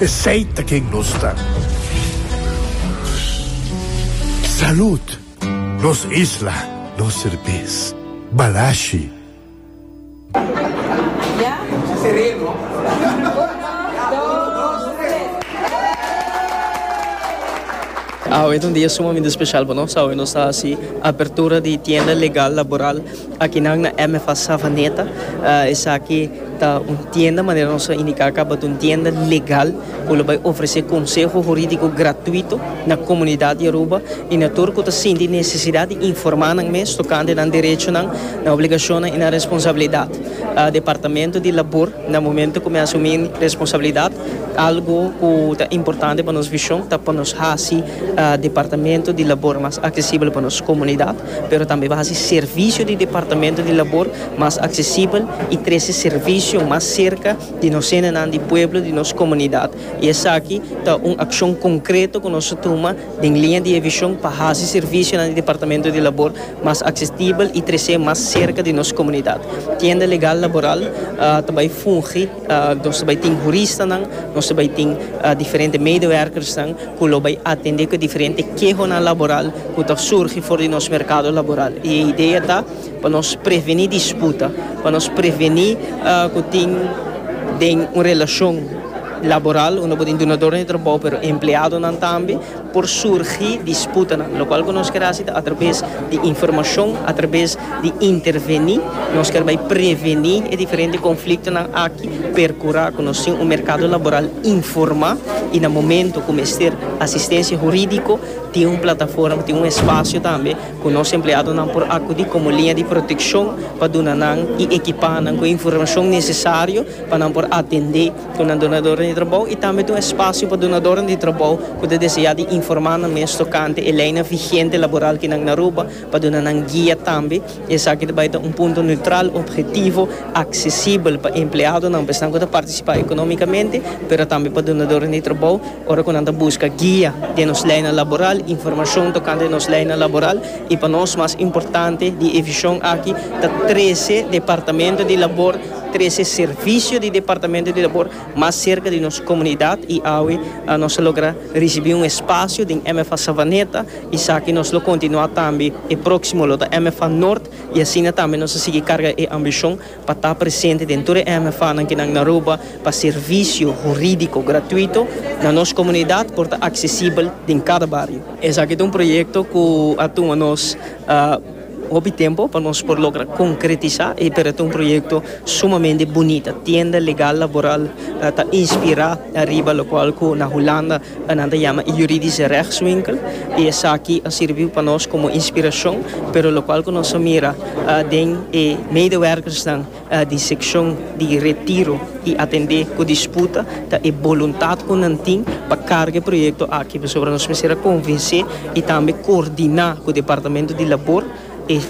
Esey ta ken nos ta. Salud! Nos isla, nos serbes. Balashi! Awe ta un dia sumamente special pa nos, awe nos ta haci apertura di tienda legal laboral. Akinan na MFA Savaneta esaki ta un tienda, manera nos a indiká akaba, ta un tienda legal ku lo bai ofresé konseho hurídiko gratuito na komunidat di Aruba i na tur ku ta sinti nesesidat di informá nan mes tokante nan derechonan, nan obligashonnan i nan responsabilidat. Departamento di Labor na momentu ku mi asumí responsabilidat algu ku ta importante pa nos vishon ta pa nos hasi Departamento di Labor mas aksesibel pa nos komunidat. pero tambe pa hasi servisio di Departamento di Labor mas aksesibel i trese servisio mas serka di nos hendenan di pueblo, di nos komunidat. I esaki ta un akshon konkreto ku nos a tuma den liña di e vishon pa hasi servisionan di Departamento di Labor mas aksesibel i trese mas serka di nos komunidat. Tienda Legal Laboral ta bai fungi. Nos ta bai tin huristanan, nos ta bai tin diferente medewerkersnan ku lo bai atendé ku e diferente kehonan laboral ku ta surgi for di nos merkado laboral. I e idea ta pa nos prevení disputa, pa nos prevení ku tin den un relashon laboral unda bo tin dunador di trabou pero empleadonan tambe. por surgi disputanan, lokual ku nos kier hasi ta atrabes di informashon, atrabes di intervení, nos kier bai prevení e diferente konfliktonan aki, perkurá ku nos tin un merkado laboral informá i na momentu ku mester asistensia hurídiko tin un plataforma, tin un espasio tambe ku nos empleadonan por akudí komo liña di protekshon pa duna nan i ekipá nan ku e informashon nesesario pa nan por atendé. Ku nan donadoren di trabou i tambe ta un espasio pa donadoren di trabou ku ta deseá di informá nan mes tokante e leinan vigente laboral ki nan na Aruba pa duna nan guia tambe. Esaki ta bai ta un punto neutral, objetivo, aksesibel pa empleadonan, pa esnan ku ta partisipá ekonómikamente, pero tambe pa donadoren di trabou ora ku nan ta buska guia den nos leinan laboral, informashon tokante nos leinan laboral i pa nos mas importante di e vishon aki ta trese Departamento di Labor Trese servisio di Departamento di Labor mas serka di nos komunidat i awe nos a logra risibí un espasio den MFA Savaneta. Esaki nos lo kontinuá tambe. E próksimo lo ta MFA Nort i asina tambe nos a sigui karga e ambishon pa ta presente den tur e MFAnan kinan na Aruba pa servisio hurídiko gratuito na nos komunidat por ta aksesibel den kada bario. Esaki ta un proyekto ku a tuma nos. Hopi tempo pa nos por logra konkretisá e pero ta un proyekto sumamente bunita. Tienda legal laboral ta inspirá riba lokual ku na Hulanda nan ta yama e Juridische Rechtswinkel i esaki a sirbi pa nos komo inspirashon, pero lokual ku nos a mira den e medewèrkersnan, di sekshon di Retiro i atendé ku disputa ta e boluntat ku nan tin pa karga e proyekto aki pasobra nos mester a konvensé i tambe koordiná ku Departamento di Labor e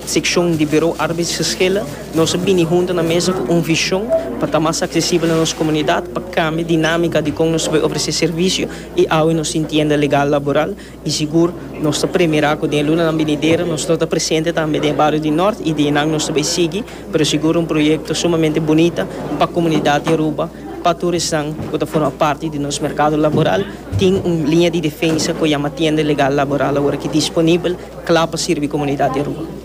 sekshon di Buro Arbeidsgeschillen nos a bini huntu na mesa ku un vishon pa ta mas aksesibel na nos komunidat pa kambia dinámika di kon nos bai ofresé servisio i awe nos tin tienda legal laboral I sigur nos ta premira cu den lunanan binidero nos lo ta presente tambe den e bario di Nort y di eynan nos ta bay sigui, pero sigur un proyecto sumamente bunita pa comunidad di Aruba, pa tur esnan cu ta forma parti di nos mercado laboral. Tin un linea di defensa cu yama tienda legal laboral awor aki disponibel cla pa sirbi comunidad di Aruba.